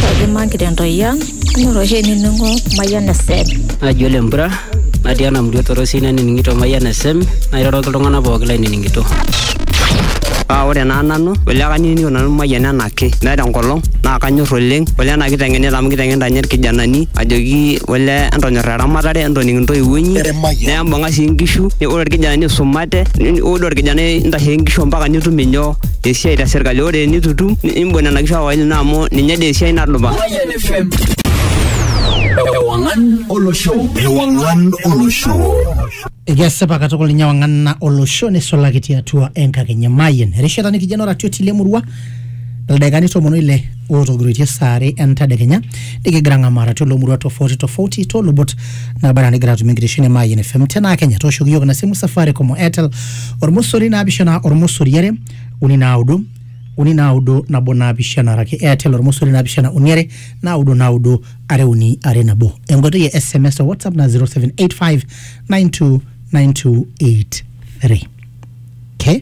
Kaji magira entoyian, ing'or oshi enining'o Mayian FM. Naji ole mpura natii ena murua torosi nanining'ito Mayian FM nairoroki iltung'anak pooki lainining'ito. Paa ore naa nanu ole kanining'ito nanu Mayian enaake meeta enkolong naa kanyor oleng ole ena kiteng'enita amu kiteng'enita ninye irkijanani ajoki ole entonyorra eramatare entoning intoiwuo inyi nembung'a sii inkishu ore irkijanani isumate ore orkijanai intashe inkishu ampaka nitum inyoo esiai te serkali ore enitutum imbung nena kishu awaili naa amu ninye dee esiai nadupa Mayan FM. Ewangan Olosho. Ewangan Olosho. Ekesipa katukul ninye wang'ana olosho neisulaki tiatua enkakenya Mayian. Erishata nikijo noratio tilemurua ildaikani tomon oile otogiroitie saa are entadekenya nikigira ng'amaara tilo murua tofauti tofauti toolubot naba anaa nigira atum enkitesheni e Mayian FM tenaa Kenya tooshoki iyiook ina simu Safaricom o Airtel ormosori naapishana ormosori are uni naudo uni naudo nabo naapishana araki Airtel ormosori naapishana uni are naudo naudo are uni are nabo enkoitoi e SMS o WhatsApp na 0785 929283 okay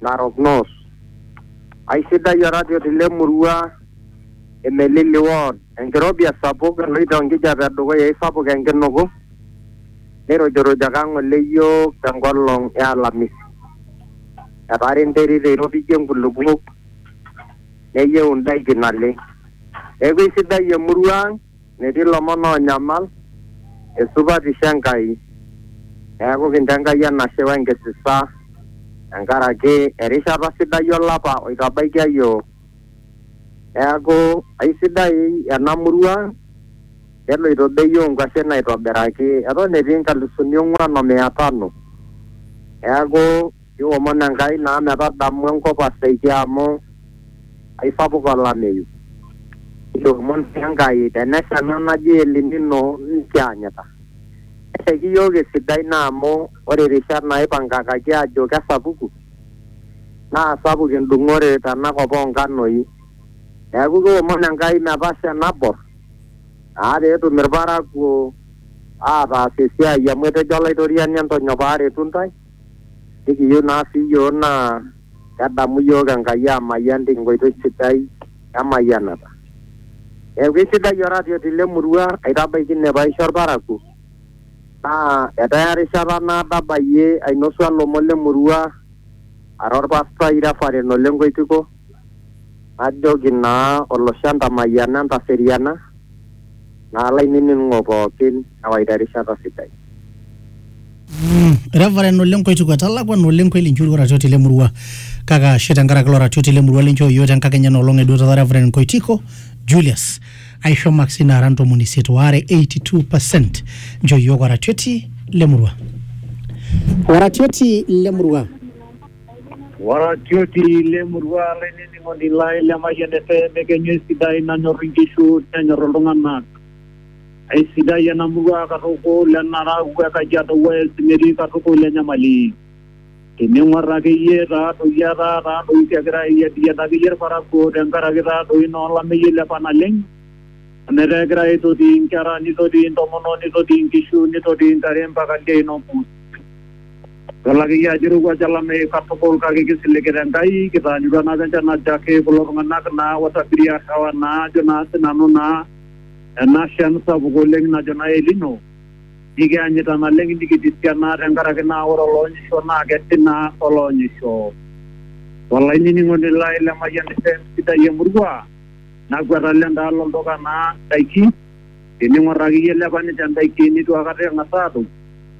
Narok North. Aisidai oratioti le murua e Melili Ward. Enkirobi esapuk eloito enkijape edukuya eisapuk enkinuku neirujurujaki ang ng'ole iyiook te nkolong e alamisi. Etaara enterit eiropijie nkulupuok neyieu indaiki naleng. Neaku eisidai emurua ang Metii lomon oonyamal esupatisho e Nkai. Neaku, kincho Enkai enashe we nkisisa tenkaraki erishata sidai olapa oitabaikia iyiook. Neaku, aisidai ena murua ang, keloito bei oo nkuashen aitobiraki. Eton etii nkalusuni ong'uan o mia tano. Neaku. Niomon Enkai naa metadamu enkop aseiki amu aisapuk olameyu. Niomon sii Enkai tenesha ena naji El Nino nikianyita. Neshaiki iyiook esidai naa amu ore rishat naaipangakaki aajo kesapuku naa sapuk endung'ore tena kop oo nkanoi. Neaku kiomon Enkai metasha enabor naa pee etum ilparakuo aataas esiai amu etejo Olaitoriani entonyok paaretu intae. nikiyieu naa sii iyiook naa kedamu iyiook Enkai aamayian tenkoitoi sidai emayianata. Neeku eisidai oratioti le murua aitabaiki ine paisho olparakuo naa etaa erishata naado abayie ainosu ilomon le murua ara olpastai Reverend Ole Nkoitiko najoki naa olosho entamayiana entaseriana. naa laininingo pookin ewaita erishata sidai. Mm, Reverend Ole Nkoituku etalakwa na Ole Nkweli Nchuri oratioti le murua kake ashe tenkaraki ilo ratioti le murua linchoo iyiook tenkakenya ena olong eduo taata Reverend Nkoitiko Julius aisho maksi naara ntomoni isiet waare 82 percent nchoo iyiook oratioti le murua. Oratioti le murua. Waratioti le murua lainining'oni lai le Mayian FM ekenyu esidai nanyor inkishu nenyor iltung'anak. Aisidai ena murua katukul enarau e Kajiado West metii katukul enyamali. Tening'or akeyie taadoi etaa taadoi kegira ayiapiyian akeyie ilparakuo tenkaraki taadoi naa olameyu oilepa naleng'. Netaa egira aitoti inkera neitoti intomonok neitoti inkishu neitoti intare mpaka ildiein olpurrusi Kelak iyie ajo eirowuaj olameyu katukul kake kisiligita Enkai, kitaanyutua naa apa enchan najo ake kulo tung'anak naa otabiria arrewa naa ajo naa sinanu naa ena shan sapuk oleng najo naa El Nino nikianyita naleng nikitisia naa tenkaraki naa ore oloonyisho naa kesi naa oloonyisho. Olainining'oni lai le Mayian FM sidai emurua nakwet alo endaalo olduka naa ndaiki Tening'or ake iyie ilepa ninche indaiki neitu akata eng'as aatum,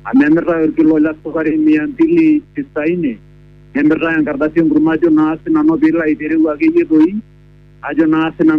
amu emirtae olkilo le sukari mia mbili tisaini, nemirtae enkardasi enkurma ajo naa sinanu pee ilo aitereu ake iyie doi ajo naa sinanu.